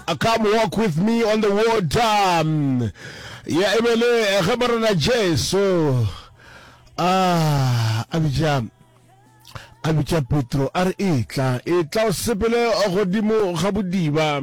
Uh, Come walk with me on the water. Mm. Ya ebele ge morena Jesu ah a bitša a bitša Petro a re etla etla o sepele godimo ga bodiba.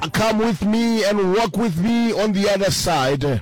Uh, Come with me and walk with me on the other side.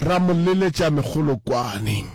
ra mo leletša megolokwane.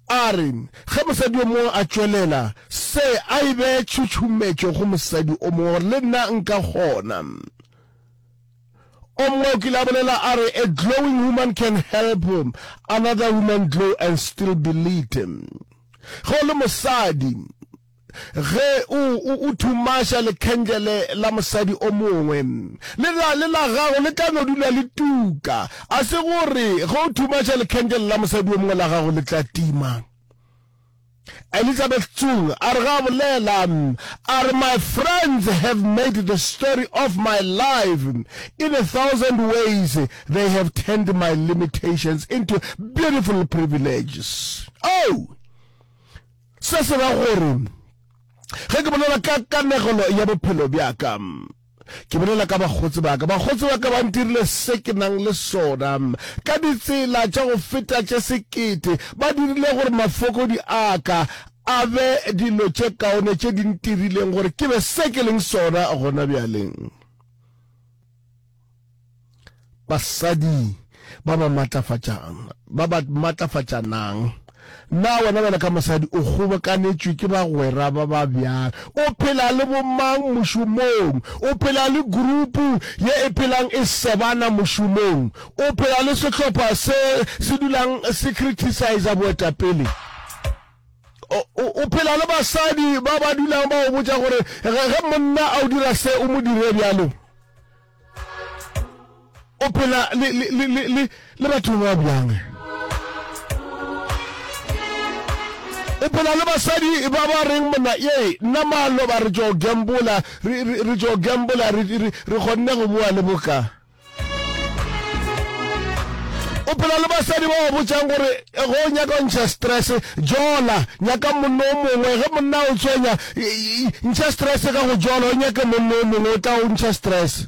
A re ge mosadi yo mongwe a tšwelela se, a e bee tšhutšhumetšo go mosadi o mongwe gore le nna nka kgona. O mongwe o kile a bolela a re, A glowing woman can help another woman glow and still be lit. Ge o le mosadi, ge o, o, o thumaša lekhendele la mosadi o mongwe, le la, le la gago le tla no dula le tuka. A se gore ge o thumaša lekhendele la mosadi o mongwe la gago le tla tima? Elizabeth Tsung a re ga bolela, a re, My friends have made the story of my life in a thousand ways. They have turned my limitations into beautiful privileges. Oh! Se se ra gore ge ke bolela ka kanegelo ya bophelo bjaka ke bolela ka bakgotsi baka bakgotsi baka ba ntirile se ke nang le sona ka ditsela tša go feta tše sekete ba dirile gore mafokodi aka a be dilo tše kaone tše di ntirileng gore ke be se ke leng sona gona bjaleng Basadi ba ba matlafatšang, ba ba matlafatšanang. Na wena bjalo ka mosadi o kgobokanetšwe ke bagwera ba ba bjang? O phela le bomang mošomong? O phela le gurupu ye e phelang e sebana mošomong? O phela le sehlopha se se dulang se krithisaisa boetapele? o phela le basadi ba ba dulang ba o botša gore ge monna a o dira se o mo dire bjalo o phela le batho ba bjang o phela le basadi ba ba reng monna ye nna malo ba re tšo gambola re tšo gambola re kgonne go boa le boka o phela le basadi ba ba botšang gore eh, go o nyaka o ntšha stress jola nyaka monno o mongwe ge monna o tshwenya ntšha stress ka go jola o nyake monno o mongwe o tla o ntšha stress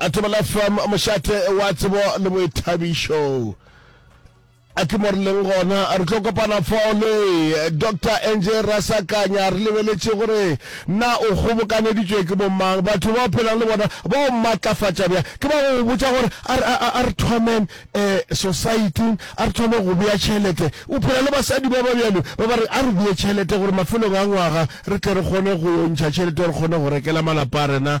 Atomela FM, mošate wa tsebo le boithabišo. A ke mo re leng gona, re tlo kopana fole. Dr Angie Rasakanya, re lebeletše gore na o kgobokaneditšwe ke bomang, batho ba o phelang le bona ba o matlafatša bjang. Ke ba go botša gore a re thomen um eh, society, a re thome go bea tšhelete. O phela le basadi ba ba bjalo ba ba re a re bee tšhelete gore mafelong a ngwaga re tle re kgone go yo ntšha tšhelete, re kgone go rekela malapa a rena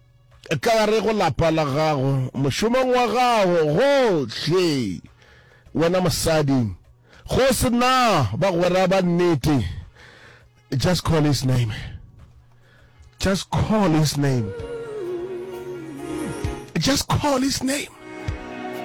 Tla re go lapa la gago, mošomong wa gago, gohle, wena mosadi, go se na bagwera ba nnete, just call his name. Just call his name. Just call his name.